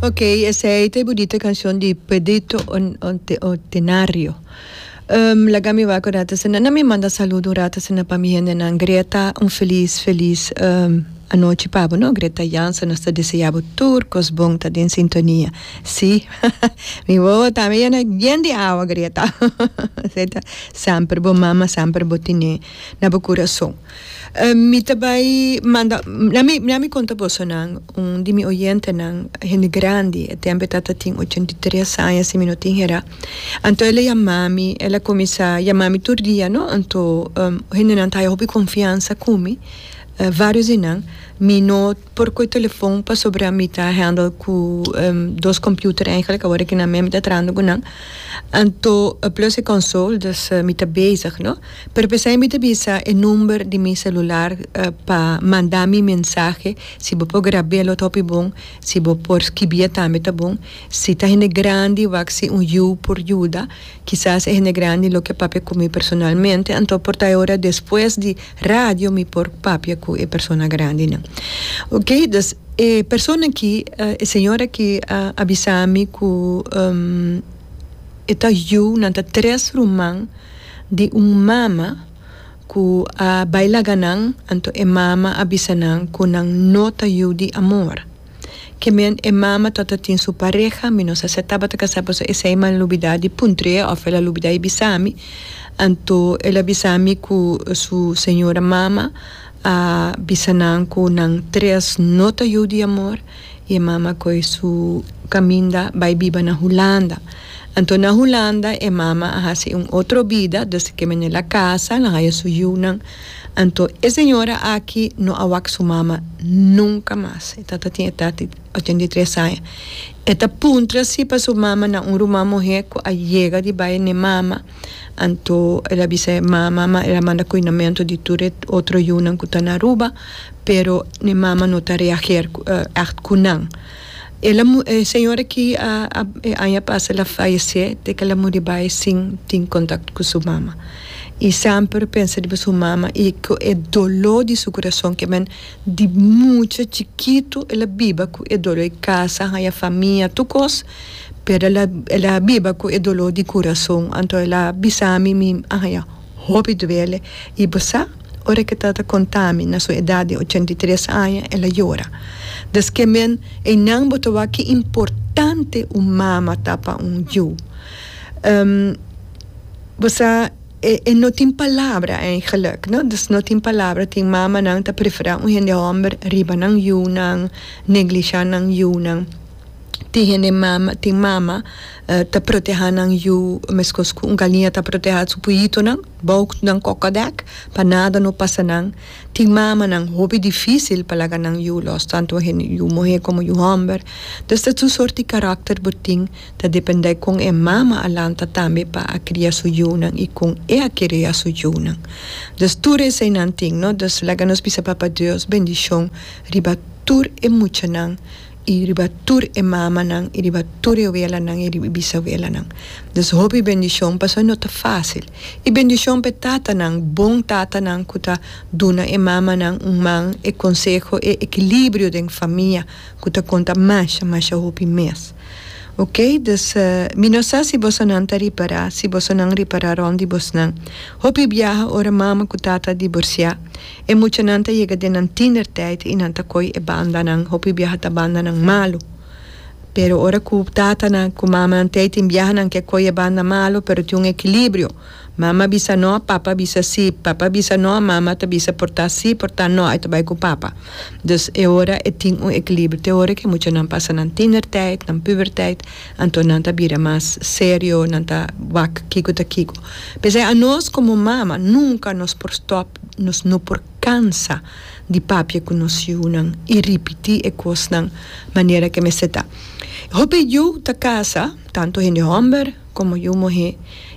Ok, esei ta e budita canción di Pedrito Otenario. Um, laga mi wak un rato asina. Na mi manda saludo un rato asina pa mi hendenan. Greta, un feliz, feliz um, anochi pa bo, no? Greta Jansen, nos ta desea bo tur cos bon, ta den sintonia. Sí, mi wowo tambe ya na yen di awa, Greta. Esei ta semper bo mama, semper bo tene na bo curason. Mi ta bai manda, dea mi conta boso nan, un di mi oyentenan, hende grandi, e tempo e tata tin ochenta i tres aña si mi no tin hera, anto el a yama mi, el a cuminsa yama mi tur dia no, anto hendenan ta haya hopi confiansa cu mi, varios di nan, mi no. Por koe telefon pasobra mi ta handle ku dos computer eigenlijk awor ki na mi mi ta trahando ku nan anto plus e konsol dus mi ta bezig no pero pesei mi ta bisa e number di mi selular pa manda mi mensahe si bo por grab'e lo ta hopi bon si bo por skibia tambe ta bon si ta hende grandi wak si un yu por yuda kisas e hende grandi lo ke papia ku mi personalmente anto por ta e ora despues di. Radio mi por papia cu e persona grandi nan. Ok dus e persona aki e señor aki a avisa mi cu e ta yu nan ta tres ruman di un mama cu a bay laga nan anto e mama a bisa nan cu nan no ta yu di amor. Ke men e mama to ta tin su pareha, mi no sa se tabata kasá paso esei m'a lubidá di puntr'é òf el a lubidá di bisa mi. Anto el a bisa mi ku su señora mama a bisa nan ku nan tres no ta yu di amor i e mama a kohe su kaminda bai biba na Hulanda. Anto na Hulanda e mama a hasi un otro bida, desde ke men el a kasa, el a haya su yunan. Anto e señora aki no a wak su mama nunka mas. E tata tin edat di ochenta i tres aña. E ta puntra si pa su mama na un ruman muhé ku a yega di bai n'e mama. Anto el a bisa e mama ma el a manda kuinamentu di tur e otro yunan ku ta na Aruba, pero n'e mama no ta reager ègt ku nan. E la e señor aki a a e aña pasa el a fayesé te ke el a muri bai sin tin kontakto ku su mama i semper pensa riba su mama i ku e doló di su kurason ke men di mucha chikitu el a biba ku e doló e kasa a haña famia tur kos pero el a el a biba ku e doló di kurason anto el a bisa mi mi a haña. Hopi duele i bo sa ora ke ta ta kontami na su edat di ochenta i tres aña el a yora. Des ke men einan bo ta wak ki importante un mama ta pa un yu. Ehm bo sa e e no tin palabra eigenlijk no des no tin palabra tin mamanan ta prefera un hende hòmber riba nan yunan neglisha nan yunan. tin hende mama tin mama ta protehá nan yu meskos ku un galinha ta protehá su puhitunan bou nan koko dèk pa nada no pasa nan tin mamanan hopi difísil pa laga nan yu lòs tantu hende yu muhé komo yu hòmber dus ta su sòrt di karakter bo tin ta dependé kon e mama a lanta tambe pa a kria su yunan i kon e a kereá su yunan dus tur esei nan tin no dus laga nos bisa Papa Dios bendishon riba tur e muchanan. i riba tur e mamanan, i riba tur e welanan, i riba e bisawelanan. Dus hopi bendishon, pasobra no ta fásil. I bendishon pa e tatanan, bon tatanan ku ta duna e mamanan un man, e konseho, e ekilibrio den famia ku ta konta masha, masha hopi mes. Oke, dus mi no sa si bosonan ta ripará, si bosonan ripará rònt di bosnan. Hopi biaha ora mama ku tata a diborsiá. E muchanan ta yega den nan tindertijd i nan ta koy e bandanan. Hopi biaha ta bandanan malu. Pero ora ku tatanan ku mamanan t'ei tin biahanan ke koy e banda malu, pero tin un ekilibrio. Mama bisa no, papa bisa sí. Papa bisa no, mama ta bisa por ta sí, por ta no. Ai ta bai ku papa. Dus e ora e tin un ekilibrio. Te ora ku e muchanan pasa nan tindertijd, nan pubertijd, anto nan ta bira mas serio, nan ta wak kiko ta kiko. P'esei anos komo mama nunka nos por stòp. Nos no por kansa di papia ku nos yunan i ripití e kosnan manera ke mester ta. Hopi yu ta kasa, tantu hende hòmber komo yu muhé,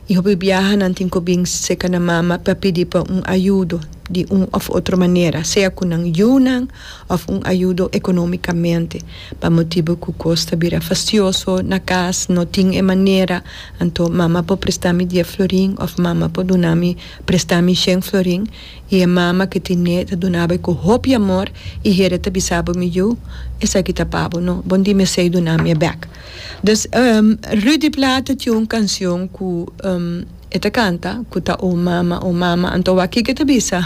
i hopi biaha nan tin ku bin seka nan mama pa pidi pa un ayudo di un òf otro manera, sea ku nan yunan òf un ayudo ekonómikamente, pa motibu ku kos ta bira fastioso na kas, no tin e manera, anto mama por prestá mi dies florin òf mama por duna mi. Presta mi shen florin y e mama ke tiné ta duna bai ku hopi amor y Heere ta bisa bo mi yu, esaki ta pa bo no, bo di mesei duna mi e bek. Dus Ruud di Plata tin un kancion ku e ta kanta ku ta O mama, o mama, anto wak kiko e ta bisa.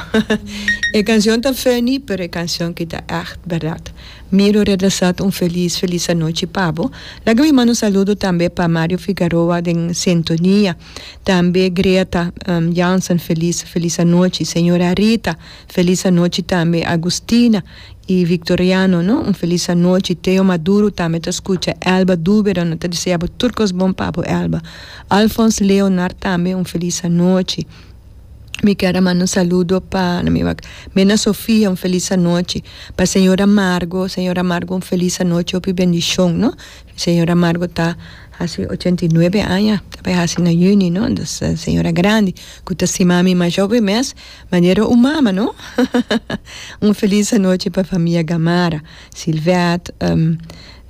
E kancion ta funny pero e kancion kita echt berdad. Miro Redasat un felis felis anochi pa bo. Laga mi manda un saludo tambe pa Mario Figaroa den sintonia. tambe Greta Jansen felis felis anochi señor Arita felis anochi tambe Agustina y Victoriano no un felis anochi Teo Maduro tambe ta scucha Elba Dubera no ta desea bo tur cos bon papo Elba Alphonse Leonard tambe un felis anochi mi ker a manda un saludo pa na mi wak Mena Sofia un felis anochi pa señora Margo señora Margo un felis anochi hopi bendicion no. Señora Margot ta hasi ochenta i nuebe aña, ta bai hasi na yüni no, dus ta señora grandi cu ta stima mi mas joven mes manera un mama no. Un feliz anochi pa famia Gamarra, Silvette,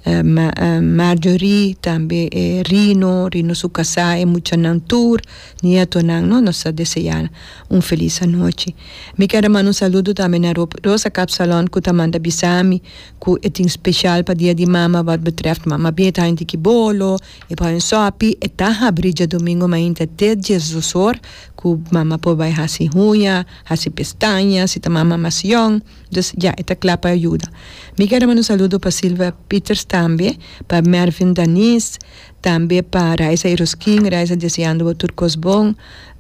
Marjorie, tambe e Rino, Rino su casa, e muchanan tur, nietonan no, nos ta desea un feliz anochi. Mi keda manda un saludo tambe na Rosa Kapsalon cu ta manda bisa mi. ku e tin speshal pa Dia di Mama wòt betrèf mama bia e ta hende ki bolo, e por hende sòpi, e ta habri djadumingu mainta te diesdosor ku mama por bai hasi huña, hasi pestaña si ta mama mas yòn, dus ya e ta kla pa yuda. Mi kere manda un saludo pa Silvia Pieters tambe, pa Mervin Daniz, tambe pa Raisa Eruskin, Raisa deseando bo tur kos bon,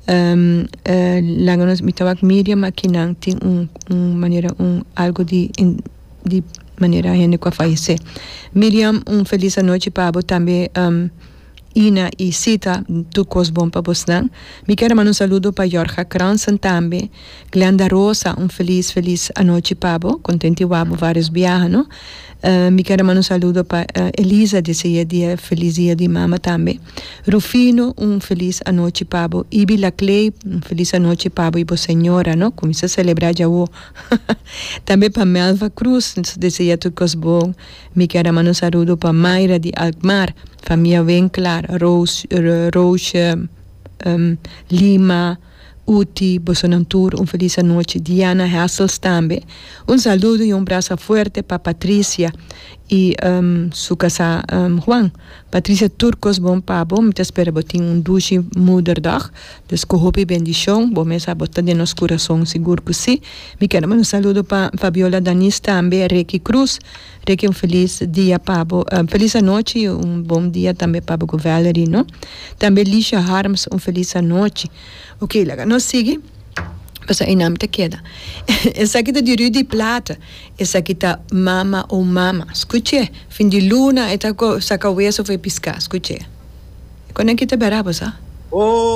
laga nos mi ta wak Miriam aki nan tin un manera un algo di. di manera hende ku a fayesé. Miriam un felis anochi pa bo tambe Ina y Sita tur kos bon pa bosnan. Mi kier a manda un saludo pa Jorga Kransen tambe. Glenda Rosa un felis felis anochi pa bo contenti wou bo varios biaha no. Mi kier a manda un saludo pa Elisa di esey e dia felis dia di mama tambe. Rufino un felis anochi pa bo. Ibi Laclay un felis anochi pa bo y bo señora no ku mi sa celebra djawo. Tambe pa Melva Cruz nos desea tur cos bon. Mi quier a manda un saludo pa Mayra di Alkmaar, famia Winklar, Roosje, Lima, Uti, bosonan tur un feliz anochi. Diana Hessels tambe un saludo y un brasa fuerte pa Patricia y su casa Juan. Patricia tur cos bon pa bo, mi ta spera bo tin un dushi moederdag, dus cu hopi bendicion, bo mes sa bo ta den nos curason, sigur cu si. Mi kende manda un saludo pa Fabiola Danis tambe, Reky Cruz, Reky un feliz dia pa bo, un feliz anochi y un bon dia tambe pa bo cu Valerie no, tambe Lisha Harms un feliz anochi. Oke laga nos sigui, pasobra ei nan mi ta keda. Esaki ta di Rudy Plaat, Esaki ta mama o mama. Skuch'é. Fin di luna e ta saka weso for e piská. Skuch'é. Koneki ta bera bo sa? O